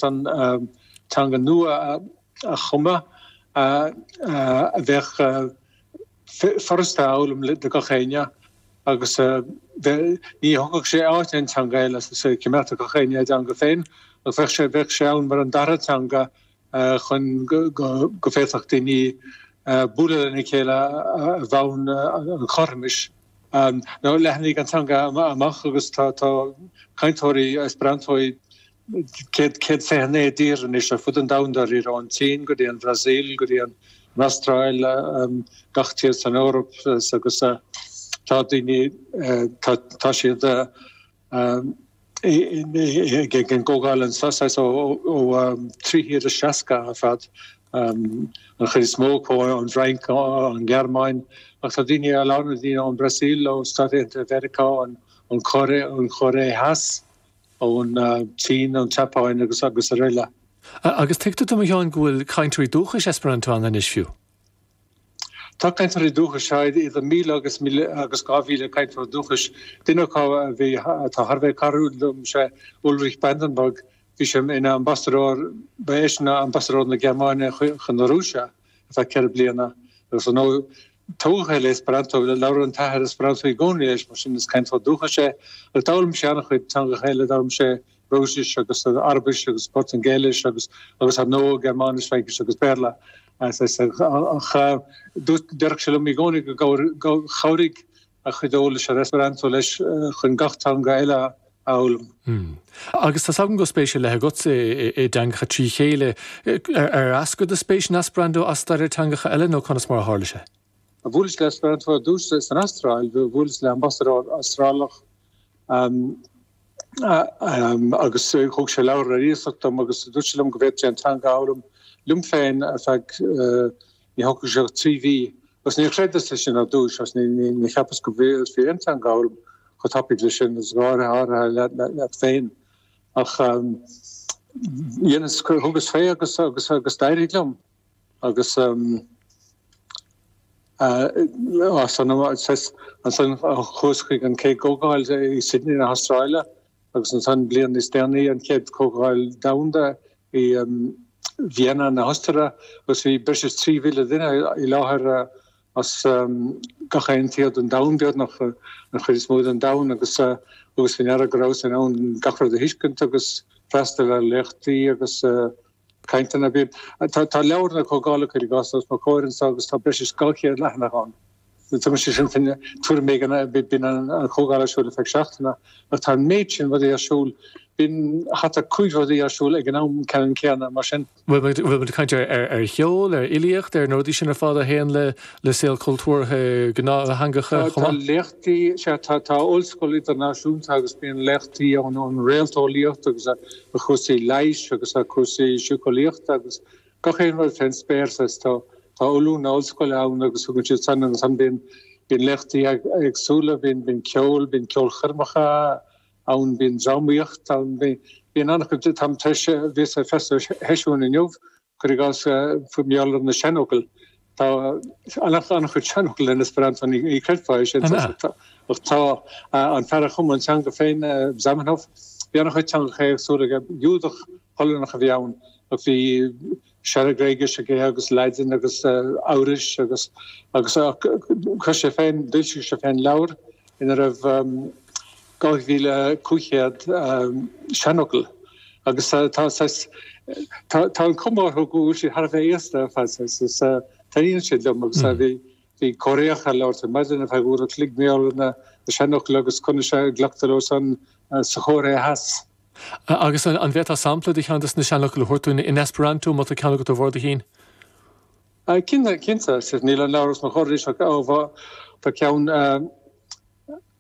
an teanga nua a chumadh a bheadh furasta a fhoghlaim do gach éinne agus ní thógfadh sé áit aon teanga eile choimeádfadh gach éinne a dteanga féin agus bheadh sé bheadh sé ann mar an dara teanga chun go bhféadfadh daoine bualadh lena chéile ar bhonn an chothromais leathnaigh an teanga amach agus tá cainteoirí Esperanto céad, céad fiche naoi dtír anois ar fud an domhain dáiríre, ón tSín go dtí an Bhrasaíl, go dtí an an Astráil, gach tír san Eoraip, agus tá daoine, tá, tá siad ag an gcomhdháil anseo saghas ó ó trí thír is seasca ar fad, an chuid is mó acu ón bhFrainc, ón nGearmáin, ach tá daoine, a lán daoine ón Bhrasaíl, ó Stáit Aontaithe Mheiriceá, ón Chóiré, ón Chóiré Theas, ón tSín, ón tSeapáin agus srl. Agus tuigtear dom, a Sheáin, go bhfuil cainteoirí dúchais Esperanto ann anois fiú? Tá cainteoirí dúchais, sea, idir míle agus dhá mhíle cainteoir dúchais. Duine acu atá thar a bheith cairdiúil liom, sé Ulrich Brandenburg, bhí sé ina ambasadóir, ba eisean ambasadóir na Gearmáine chun na Rúise ar feadh ceithre bliana, agus ar ndóigh, tógtha le Esperanto. Labhair an t-athair Esperanto i gcónaí leis, mar sin is cainteoir dúchais é. Ach d'fhoghlaim sé an-chuid teangacha eile, d'fhoghlaim sé Rúisis agus Araibis agus Portaingéilis agus, agus ar ndóigh, Gearmáinis, Fraincis agus Béarla. Dúirt, déarfadh sé liom i gcónaí gur chabhraigh a chuid eolais ar Esperanto leis chun gach teanga eile a fhoghlaim. Agus tá's agam go bhfuil spéis ar leith agat i dteangacha trí chéile. Ar eascair do spéis in Esperanto as staidéar teangacha eile nó conas mar a tharla sé? Bhuaileas le Esperanto ar dtús san Astráil. Bhuaileas le hambasadóir Astrálach agus thug sé leabhar ar iasacht dom agus dúirt sé liom go bhféadfainn an teanga a fhoghlaim liom féin ar feadh Ní thógfadh sé ach trí mhí, agus níor chreideas é sin ar dtúis, agus níor cheapas go bhféadfá aon teanga a fhoghlaim chomh tapaidh leis sin, agus go háirithe leat féin. Ach dheineas, thugas fé agus d'éirigh liom, agus ansan chuas chuig an chéad gcomhdháil i Sydney na hAstráile. agus ansan bliain níos déanaí, an Chéad Chomhdháil Dhomhanda i Vienna na hOstaire agus bhí breis is 3,000 duine i láthair as gach aon tír den domhan, beagnach, an chuid is mó den domhan agus thugas fé ndeara go rabhas in ann gach rud a thuiscint agus freastal ar léachtaí agus. cainteanna bhí. Tá leabhar na Comhdhála cuir i gcás, os mo chomhair anso agus tá breis is dhá chéad leathanach ann. Tugann sé sin tuairim éigin bíonn an Chomhdháil ar siúl ar feadh seachtaine ach tá an méid sin rudaí ar siúl, bíonn thart ar chúig rudaí ar siúl ag an am ceannann céanna, mar sin. Bhfuil muid ag caint ar cheol, ar fhilíocht, ar na rudaí sin ar fad a théann le saol cultúrtha gnáth-theanga chomh maith? Tá léachtaí, sea, tá Ollscoil Idirnáisiúnta agus bíonn léachtaí ann, an réalteolaíocht agus ar chúrsaí leighis agus ar chúrsaí síceolaíochta agus gach aon rud fén spéir saghas. Tá tá ollúna ollscoile ann agus tugann siad san agus ansan bíonn bíonn léachtaí eagsúla, bíonn bíonn ceol, bíonn ceolchoirmeacha ann, bíonn drámaíocht ann, bíonn bíonn an-chuid de. Táim tar éis, bhíos ag sé sheisiún inniu Cuir i gcás, is maith liom na seanfhocal, tá an-chuid seanfhocal in Esperanto, ní chreidfeá é sin, ach tá. An fear a chum an teanga féin, Zamenhof, bhí an-chuid teangacha éagsúla aige. Giúdach Polannach a bhí ann, ach bhí Sean-Ghréigis aige agus Laidin agus Eabhrais agus chuir sé féin, d'fhoilsigh sé féin leabhar ina raibh, 2500 seanfhocal agus tá saghas, tá, tá an cuma orthu go bhfuil siad thar a bheith aosta ar fad saghas is eh, taitníonn siad liom agus eh, bhí, bhí Coréach ag labhairt ar maidin a bhí ar foghlaim na seanfhocal agus conas a glactar leo san eh, sa Chóiré Theas. Agus an, an bhféadfá sampla de cheann desna seanfhocal a thabhairt dúinn in Esperanto má tá ceann agat de bharr do chinn? Cinnte, cinnte, níl an labhras mo choirí seo ó bhá tá ceann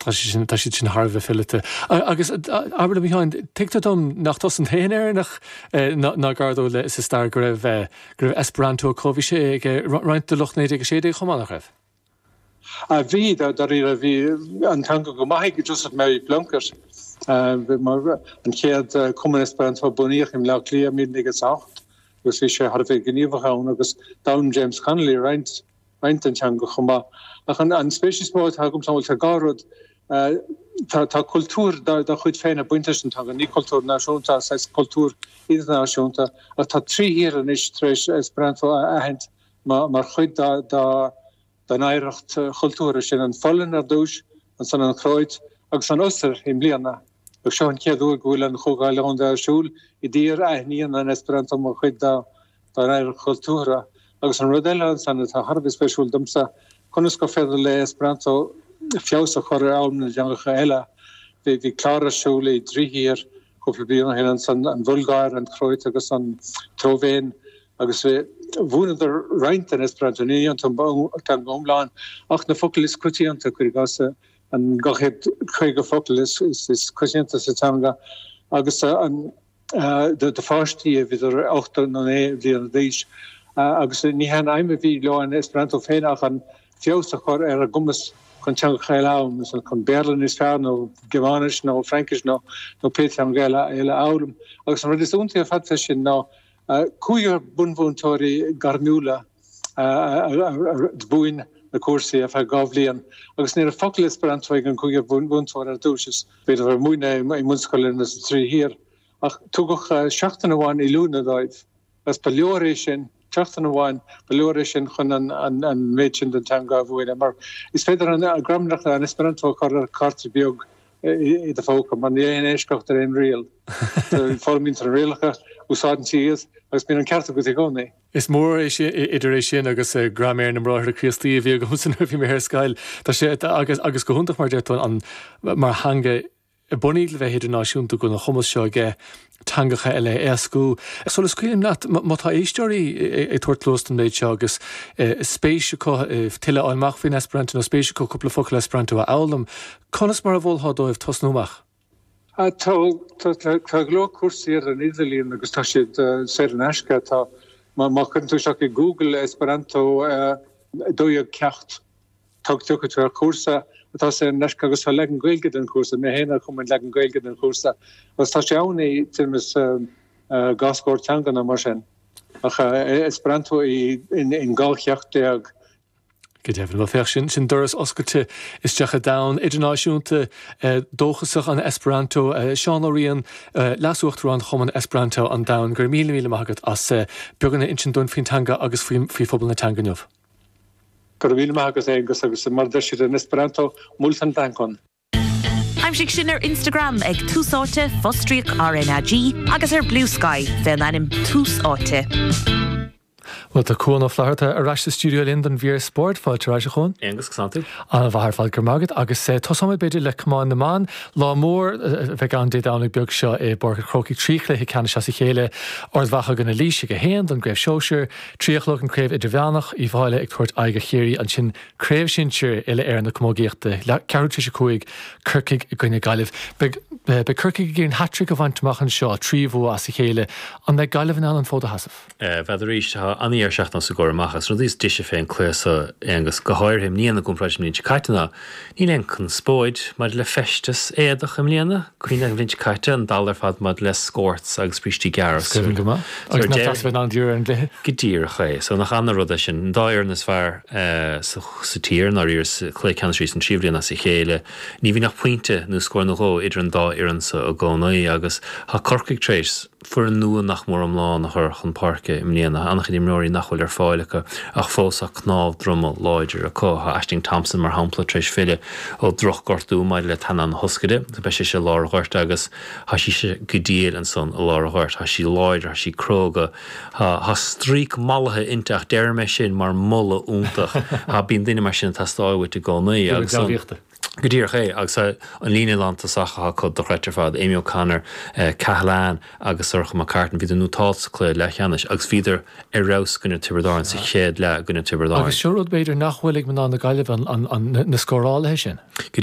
Tá sé sin, tá siad sin thar a bheith fileata. Agus, abair liom, a Sheáin, tuigtear dom nach tusa an t-aon Éireannach ná gar dó, sa stair go raibh, go raibh Esperanto acu. Bhí sé ag roinnt de lucht 1916 chomh maith, nach raibh? A bhí, dáiríre. Bhí an teanga go maith ag Joseph Mary Plunkett, an chéad cumann Esperanto a bunaíodh i mBleá Cliath i 1908, agus bhí sé thar a bheith gníomhach ann, agus d'fhoghlaim James Connolly roinnt. roinnt den teanga chomh maith. Ach an spéis is mó atá agamsa, bhuel, tá dhá rud. Tá cultúr dá chuid féin ag baint leis an teanga, ní cultúr náisiúnta ach saghas cultúr idirnáisiúnta, ach tá trí thír anois tar éis Esperanto a aithint mar chuid dá n-oidhreacht chultúrtha sin, an Pholainn ar dtús, ansan an Chróit, agus an Ostair i mbliana. Agus seo an chéad uair go bhfuil an Chomhdháil Dhomhanda ar siúl i dtír a aithníonn an Esperanto mar chuid dá n-oidhreacht chultúrtha. Agus an rud eile ansan atá thar a bheith spéisiúil domsa, conas gur féidir le Esperanto feabhas a chur ar fhoghlaim na dteangacha eile. Bhí clár ar siúl i dtrí thír cúpla bliain ó shin ansan, an Bhulgáir, an Chróit agus an tSlóivéin, agus mhúineadar roinnt den Esperanto, ní an teanga iomlán ach na focail is coitianta, cuir i gcás. an 250 focal is coitianta sa teanga agus do pháistí idir ocht nó naoi mbliana d'aois, agus ní hé an aidhm a bhí leo an Esperanto féin ach feabhas a chur ar a gcumas chun teangacha eile a fhoghlaim, chun Béarla níos fearr nó Gearmáinis nó Fraincis nó pé teanga eile a fhoghlaim. Agus an rud is iontaí ar fad faoi sin ná Cúigear bunmhúinteoirí gairmiúla a mhúin na cúrsaí ar feadh dhá bhliain agus ní raibh focal Esperanto ag an gcúigear bunmhúinteoir ar dtús. Is é sin bhí siad ag múineadh i mbunscoileanna sa trí thír ach tugadh seachtain amháin oiliúna dóibh agus ba leor é sin, seachtain amháin, ba leor é sin chun an méid sin den teanga a mhúineadh, mar is féidir an ghramadach an Esperanto a chur ar chárta beag i do phóca. Mar níl aon eisceacht ar aon riail. Foghlaimíonn tú na rialacha, úsáideann tú iad agus bíonn an ceart agat i gcónaí. Is mór idir é sin agus Graiméar na mBráithre Críostaí a bhí agamsa nuair a bhí mé ar scoil. Tá sé, agus go hiontach, mar a deir tú, mar theanga bunaidh le bheith idirnáisiúnta, go bhfuil an cumas seo aige. teangacha eile a éascú. Sula scaoilim leat, má tá éisteoirí ag tabhairt cluas don mhéid seo agus spéis acu tuilleadh a fháil amach faoin Esperanto nó spéis acu cúpla focal Esperanto a fhoghlaim, conas mar a mholfá dóibh tosnú amach? Tá go leor cúrsaí ar an idirlíon agus tá siad saor in aisce. Má chuireann tú isteach i Google Esperanto 12 ceacht, Tagann tú ar chúrsa atá saor in aisce agus tá leagan Gaeilge den chúrsa, mé féin a chum an leagan Gaeilge den chúrsa agus tá sé ann i dtuairim dhá scór teanga nó mar sin ach Esperanto in dhá cheacht déag. Go deimhin, féach sin, sin doras oscailte isteach i domhan idirnáisiúnta dóchasach an Esperanto. Seán Ó Riain, Leas-Uachtarán Chumann Esperanto an Domhain, go raibh míle míle maith agat as beagán a insint dúinn faoin teanga agus faoi phobal na teanga inniu. Go raibh míle maith agat, Aonghus, agus mar a deir siad in Esperanto, Multan dankon! Aimsigh sinn ar Instagram ag Tús Áite, fostríoc RnaG, agus ar Bluesky fé an ainm Tús Áite. Bhuel, tá Cuán Ó Flatharta ar ais sa stiúideo linn don mhír spóirt. Fáilte ar ais, a Chuán. Aonghus, cén chaoi a bhfuil tú. Ana mhaith ar fad, go raibh maith agat. Agus tosóimid b'fhéidir le camáin na mban. Lá mór a bheidh ann Dé Domhnaigh beag seo i bPáirc an Chrócaigh. Trí chluiche ceannais as a chéile, Ard Mhacha in aghaidh Laoise ag a haon don gcraobh shóisir, Trí a chlog an Craobh Idirmheánach, Uíbh Fháilhe ag tabhairt aghaidh ar Chiarraí, ansin Craobh Sinsear Uile-Éireann na Camógaíochta, Ceathrú théis 5, Corcaigh i gcoinne Gaillimh. Beidh Corcaigh ag iarraidh hat-trick a bhaint amach anseo, trí bhua as a chéile. An mbeidh Gaillimh in ann an fód a sheasamh? B'fhéidir é. Is fada an lá seachtain sa gcomhaireamh, an rud is deise fén cluiche so, Aonghus, go háirithe. i mbliana i gcomparáid le blianta caite ná. Níl aon conspóid maidir le feisteas éadach i mbliana, cuimhnigh an bhliain seo caite, an dall ar fad maidir le scorts agus brístí gearra. Is cuimhin go maith. Agus nach deas a bheith in ann díriú ar an gcluiche. Go díreach é. So nach an-rud é sin. An dá fhoireann is fearr sa tír, i ndáiríre, sa chluiche ceannais arís an tríú bhliain as a chéile. Ní bhíonn ach pointe nó scór nó dhó idir an dá fhoireann so i gcónaí agus tá Corcaigh tar éis a foireann nua nach mór iomlán a chur chun páirce i mbliana, an-chuid imreoirí nach bhfuil ar fáil acu ach fós tá cnámh droma láidir acu. Tá Ashling Thompson, mar shampla, tar éis filleadh ó dhrochghortú maidir le teannán na hioscaide. Beidh sise i lár an ghoirt agus tá sise go diail ansan i lár an ghoirt. Tá sí láidir, tá sí cróga, tá stríoc mallaithe inti ach deirim é sin mar mholadh iontach. Bíonn duine mar sin ag teastáil uait i gcónaí agus an. Go díreach é, agus tá an líne lántosach atá acu dochreidte ar fad, Amy O'Connor, Cahalane agus Sorcha McCartan, bhíodar nótáilte sa cluiche leathcheannais agus bhíodar ar fheabhas i gcoinne Tiobraid Árann sa chéad leath i gcoinne Tiobraid Árann. Agus seo rud b'fhéidir nach bhfuil ag mná na Gaillimhe, na scórálaithe sin.